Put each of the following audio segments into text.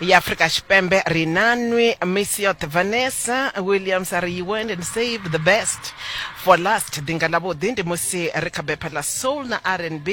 ya afrika tshipembe ri na nwi miss yoṱhe vanessa williams a ri you went and save the best for last ḓinga ḽavhuḓi ndi musi ri kha bepha ḽa soul na rnb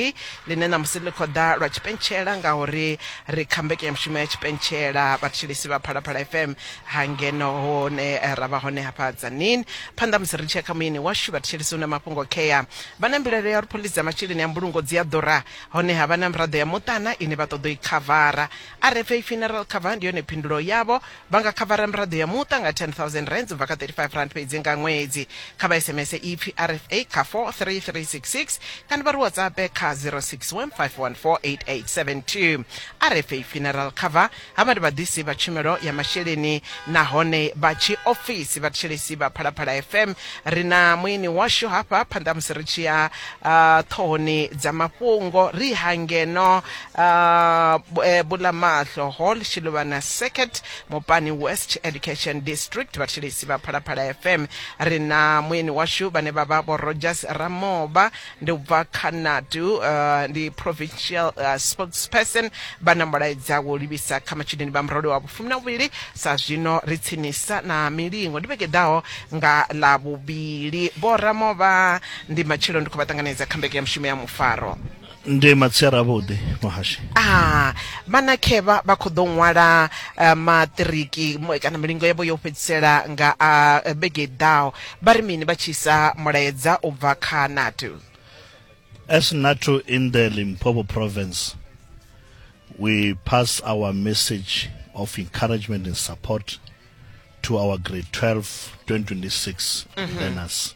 ḽine ṋamusi ḽi khou ḓa lwa tshipentshela ngauri ri kha mbekanyamushumo ya tshipentshela vhatshilisi vha phalaphala fm hangeno hone eh, ra vha hone hafha dzanini phanḓa musi ri tshia kha muyeni washu vhatshilisi hu na mafhungo khea vha na mbilaelo ya uri phoḽisi dza masheleni a mbulungo dzi a ḓura honeha vha na miraḓo ya muṱana ine vha ṱoḓo i khavara RFA Funeral Cover ndi yone phindulo yavho. Vha nga khavara miraḓo ya muṱa nga 10,000 rands u bva kha 35 rand fhedzi nga ṅwedzi. Kha vha SMS ipfi RFA kha 43366 kana vha ri WhatsApp kha 0615148872. RFA Funeral Cover havha ndi vhaḓisi vha tshumelo ya masheleni nahone vha tshi ofisi vha thetshelesi vha Phalaphala FM. Ri na muini washu hafha phanḓa musi ri tshi ya uh, ṱhohoni dza mafhungo ri hangeno Uh, eh, bulamahlo hall shiluvhana circuit mupani west education district vhathilisi vha phalaphala fm ri na muyeni washu vhane vha vha vho rogers ramoba ndi u bva khanadu uh, ndi provincial uh, spokesperson vha na mulaedza wo livhisa kha matshudeni vha murole wa vhufumi na vhuvhili sa zwino ri tsinisa na milingo ndi vhege ḓaho nga ḽa vhuvhili vho ramoba ndi matshelo ndi khou vha ṱanganedza kha mbeke ya mushumo ya mufaro ndi matsiara avhuḓi muhashi a ah, vhana khevha vha khou ḓo ṅwala eh, maṱiriki kana milingo yavho yo fhedzisela nga a ah, vhege ḓaho vha ri mini vha tshi isa mulaedza u bva kha natu as natu in the limpopo province we pass our message of encouragement and support to our grade 12 2026 mm -hmm. learners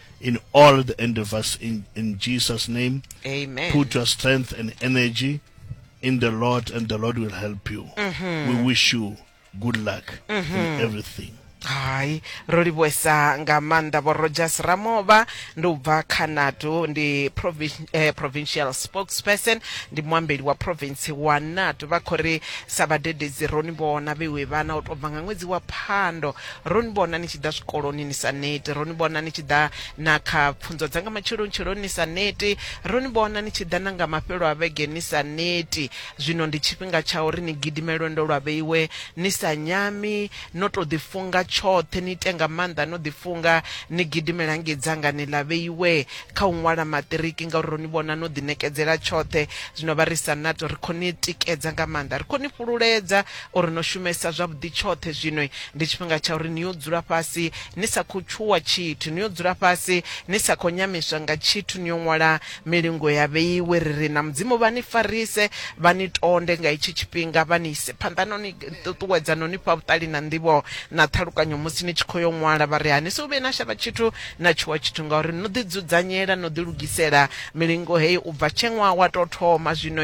in all the endeavors in, in Jesus' name. Amen. Put your strength and energy in the Lord, and the Lord will help you. Mm-hmm. We wish you good luck mm-hmm. in everything. hai ro livhuwesa nga maanḓa vho rogers ramova ndi u bva kha nato ndi eh, provincial spokesperson ndi muambeli wa province wa nato vha khou ri sa vhadededzi roni vhona vhewe vhana u tou bva nga ṅwedzi wa phando Ro ni vhona ni tshi ḓa zwikoloni ni sa neti, ro ni vhona ni tshi ḓa na kha pfunzo dza nga matsheloni-tsheloni ni sa neti, ro ni vhona ni tshi ḓa na nga mafhelo a vhege ni sa neti. Zwino ndi tshifhinga tsha uri ni gidime lwendo lwa vheiwe ni sa nyami, no tou ḓifunga tshoṱhe, ni ite nga maanḓa no ḓifunga, ni gidimele hangei dzangani ḽa vheiwe kha u ṅwala maṱiriki ngauri ro ni vhona no ḓiṋekedzela tshoṱhe. Zwino vha ri, Sanato, ri khou ni tikedza nga maanḓa, ri khou ni fhululedza O ri no shumesa zwavhuḓi tshoṱhe zwino. Ndi tshifhinga tsha uri ni yo dzula fhasi ni sa khou tshuwa tshithu, ni yo dzula fhasi ni sa khou nyamiswa nga tshithu, ni yo ṅwala milingo ya vheiwe. Ri ri na Mudzimu vha ni farise, vha ni tonde nga hetshi tshifhinga, vha ni ise phanḓa no ni ṱuṱuwedza no ni fha vhuṱali na nḓivho na ṱhalukanyo musi ni tshi khou yo ṅwala. Vha ri, Ha ni sou vhuye na shavha tshithu na tshuwa tshithu ngauri no ḓidzudzanyela, no ḓilugisela milingo heyi u bva tshe ṅwaha wa tou thoma zwino.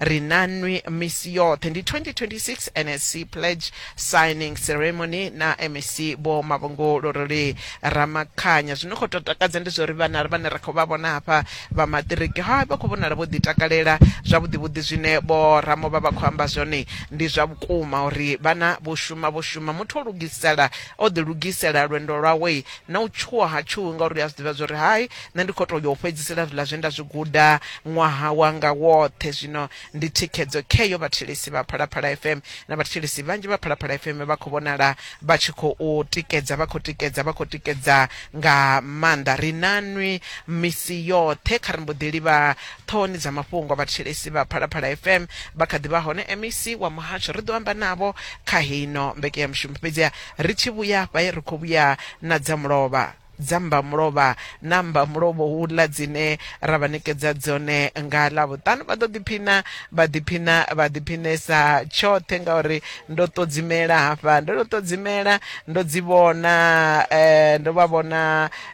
ri na nwi misi yoṱhe ndi 2026 nsc pledge signing ceremony na mec vho mavhungolo roli ramakhanya zwino khou tou takadza ndi zwa uri vhana vhane ra khou vha vhona hafha vha maṱiriki ha vha khou vhonala vho ḓitakalela zwavhuḓi vhuḓi zwine vho ramo vha vha khou amba zwone ndi zwa vhukuma uri vhana vho shuma vho shuma muthu o lugisela o ḓilugisela lwendo lwawe na u tshuwa ha tshuwi ngauri a zwi ḓivha zwa uri hai Nṋe ndi khou tou ya u fhedzisela zwiḽa zwe nda zwi guda ṅwaha wanga woṱhe. Zwino ndi thikhedzo kheyo vhathetshelesi vha Phalaphala FM. Na vhathetshelesi vhanzhi vha Phalaphala FM vha khou vhonala vha tshi khou tikedza, vha khou tikedza, vha khou tikedza nga maanḓa. Ri na nwi misi yoṱhe. Kha ri mbo ḓi livha ṱhohoni dza mafhungo vhathetshelesi vha Phalaphala FM. Vha kha ḓi vha hone e MEC wa muhasho. Ri ḓo amba navho kha heino mbekeyamushumo. Fhedziha ri tshi vhuya hafha, ri khou vhuya na dza mulovha. dza mmbamulovha na mmbamulovho uḽa dzine ra vha ṋekedza dzone nga ḽavhuṱanu vha ḓo ḓiphina vha ḓiphina vha ḓiphinesa tshoṱhe ngauri ndo ṱodzimela hafha ndo no ṱodzimela ndo dzi vhona um ndo vha vhona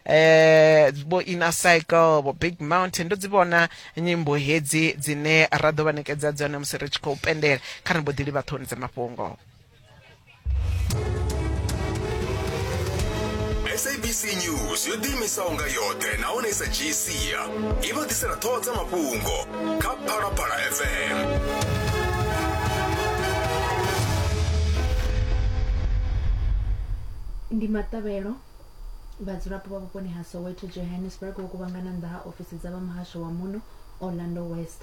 um vho inner cycle vho big mountain ndo dzi vhona nyimbo hedzi dzine ra ḓo vha ṋekedza dzone musi ri tshi khou pendela kha ri mbo ḓi livha ṱhoni dza mafhungo sabc news yo ḓiimisaho nga yoṱhe nahone i sa dzhii sia i vha ḓisela ṱhoho dza mafhungo kha phalaphala fm ndi maṱavhelo vhadzulapo vha vhuponi ha soweto johannesburg vho kuvhangana nnḓa ha ofisi dza vha muhasho wa muno orlando west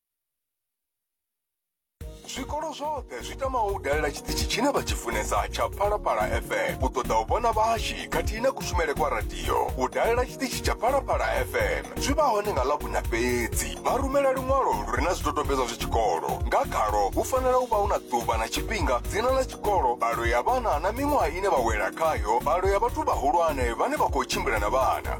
zwikolo zwoṱhe zwi tamaho u dalela tshiṱitshi tshine vha tshi funesa tsha phalaphala fm u ṱoḓa u vhona vhahashi khathihi na kushumele kwa radio u dalela tshiṱitshi tsha phalaphala fm zwi vha hone nga ḽavhuna fhedzi vha rumela luṅwalo lu re na zwidodombedzwa zwa tshikolo nga khalo hu fanela u vha hu na ḓuvha na tshifhinga dzina ḽa tshikolo mbalo ya vhana na miṅwaha ine vha wela khayo mbalo ya vhathu vhahulwane vhane vha khou tshimbila na vhana